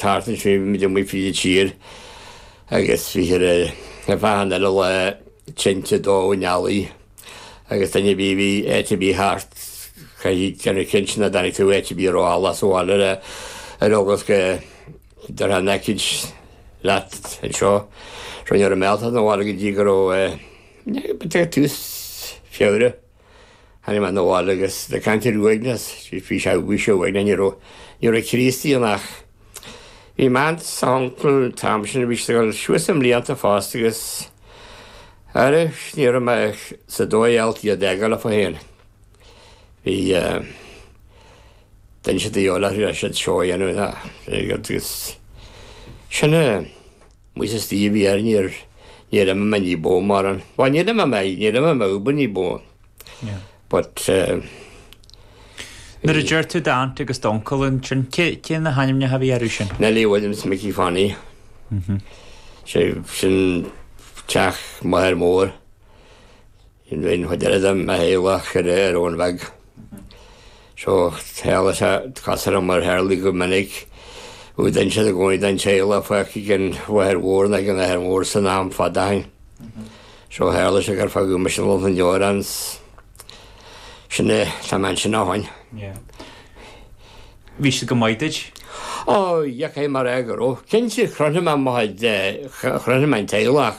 Thart ar sé mhíle amuigh fríd an tír agus bhí sé ar fáth an uile lá tinte ag dó an eallaigh agus duine ar bith a bhí áit ar bith thart chaithfeá déanamh cinnte nach dtáinig tú áit ar bith a raibh eallach sa bhaile le ar eagla go dtabharfá an aicíd leat anseo ní raibh mé ábalta 'na bhaile go dtí go raibh eh, tús Feabhra Tháinig mé 'na bhaile agus le caint ar uaigneas, bhí sé uaigneach you know, ní raibh ní raibh Críostaí ann ach bhí m'aunt 's uncle an t-am sin, bhí siad ag dul suas i mblianta fosta agus ara ní raibh mé sa dóigh ábalta iad a fhágáil leofa féin. Bhí eh, d'inis siad a eolas, bhí siad seó a dhéanamh agus sin eh. Muid is daoibh a dhear níor, níor imigh mé ní ba mhó mórán, bhuel níor imigh mé, níor imigh mé uathu ní ba mhó but eh, Nuair a deir tú d'aint agus d'uncail ansin, cé, cé na hainmneacha a bhí orthu sin? Nellie agus Mickey Fanny. Sé, sin teach m'athair mór. Sin bhí an chuid eile de mo shaol a cuireadh ar fhóin bheag. Seo shaol is ea cás orm mar tharlaigh go minic. Bhí duine siúd i gcónaí den teaghlach fágtha ag an mháthair mhór nó ag an athair mhór san am fad ó shin. So tharla sé gur fágadh mise lom san deoir ansin is Tá mé ansin ó shoin. Bhí siad go maith duit? Ó, dheachaigh mé ar go raibh. Cinnte, chronaigh mé mo chuid, chronaigh mé an teaghlach.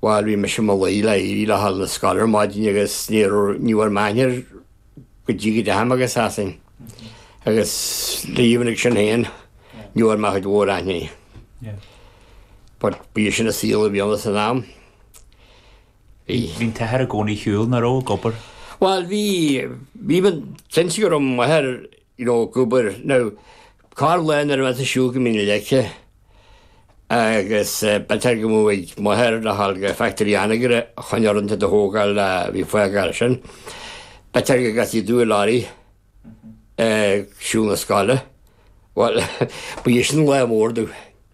Bhuel, bhí mise i mo luí le éirí le haghaidh na scoile ar maidin agus ní bhfuair mé aithne air go dtí go dteachaigh mé go Sasain. Agus le líomhnaigh sin féin, ní bhfuair mé cuid mhór aithne air. But bhí sin an saol a bhí ann san am. Bhí'n t-athair i gcónaí ar shiúl, nach raibh, ag obair? Bhuel, bhí, bhí, cinnte go raibh m'athair, you know, ag obair. Now, Corrlá nuair a bheadh muid ag siúl go Mín na Leice agus b'fhéidir go mbeadh mo mháthair le ghabháil go Factory Anagaire chun uaireanta do thógáil a bhí fágáil sin. B'fhéidir go gcasfaí dúinn lorry ag siúl 'na scoile. Bhuel, ba é sin lá mór dúinn.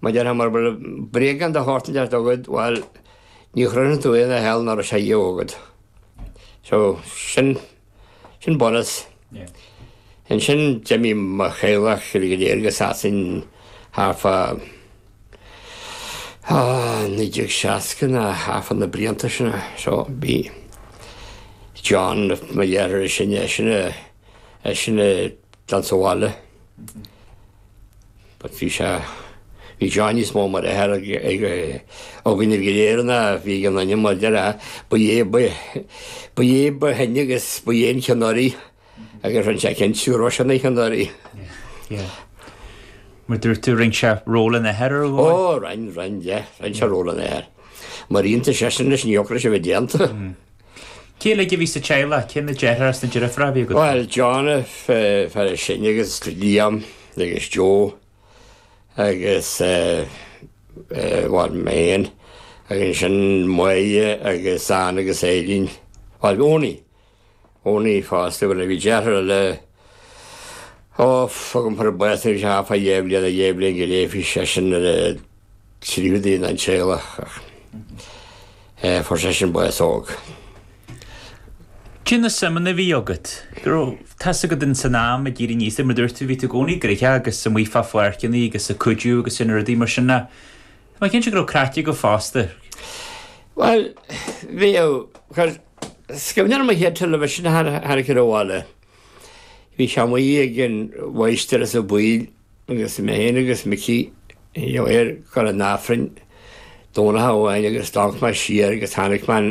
Má deir hamar bhuel, bréagáin de shórt inteacht chugat, bhuel, ní chronaíonn tú aon fhear eile nach raibh sé ariamh agat. So, sin, sin bonus. Ansin, d'imigh mo theaghlach uilig go léir go Sasain thart fá, á, 1960 nó thart fá na blianta sin. So, bhí John, mo dheartháir is sine, eisean a, É sin againn sa bhaile. But bhí sé, bhí John níos mó mar athair ag, ag, againn go léir ná bhí an ainm mar deir a, ba é, ba, ba é ba shine agus ba é an ceannaire agus rinne sé cinnte gur eisean an ceannaire. Yeah. Mar dúirt tú, rinne sé ról an athair ar dhóigh? Ó, rinne, rinne, yeah, rinne sé ról an athair. Mar iontas, é sin leis an eochrais a bheith déanta. Cé uilig a bhí sa teaghlach? Cé na deartháireacha is na deirfiúracha a bhí agat? Bhuel, John, an fear is sine agus Liam agus Joe agus bhuel, mé fhéin agus ansin Moya agus Ann agus Eileen. Bhuel, Eoin, Eoin fosta, bhuel bhí deartháir eile, Ó, fágaim thar baill anois a chaithfeá léamh lena léamh linn go raibh seisean ar an tríú duine sa teaghlach ach fuair seisean bás óg. Cé na suimeanna a bhí agat? Go raibh tá's agat in san am ag éirí aníos mar dúirt tú bhí tú i gcónaí gnoitheach agus amuigh fá pháirceannaí agus ag cuidiú agus sin rudaí mar sin ná Tá mé cinnte go raibh craic agat fosta. Bhuel bhíodh, is cuimhin liom an chéad television a tháinig chun an bhaile. Bhí sé amuigh ag an mháighistir Ó Baoill agus mé féin agus Micí ag gabháil chuig an Aifrinn Domhnach amháin agus d'amharc mé siar agus chonaic mé an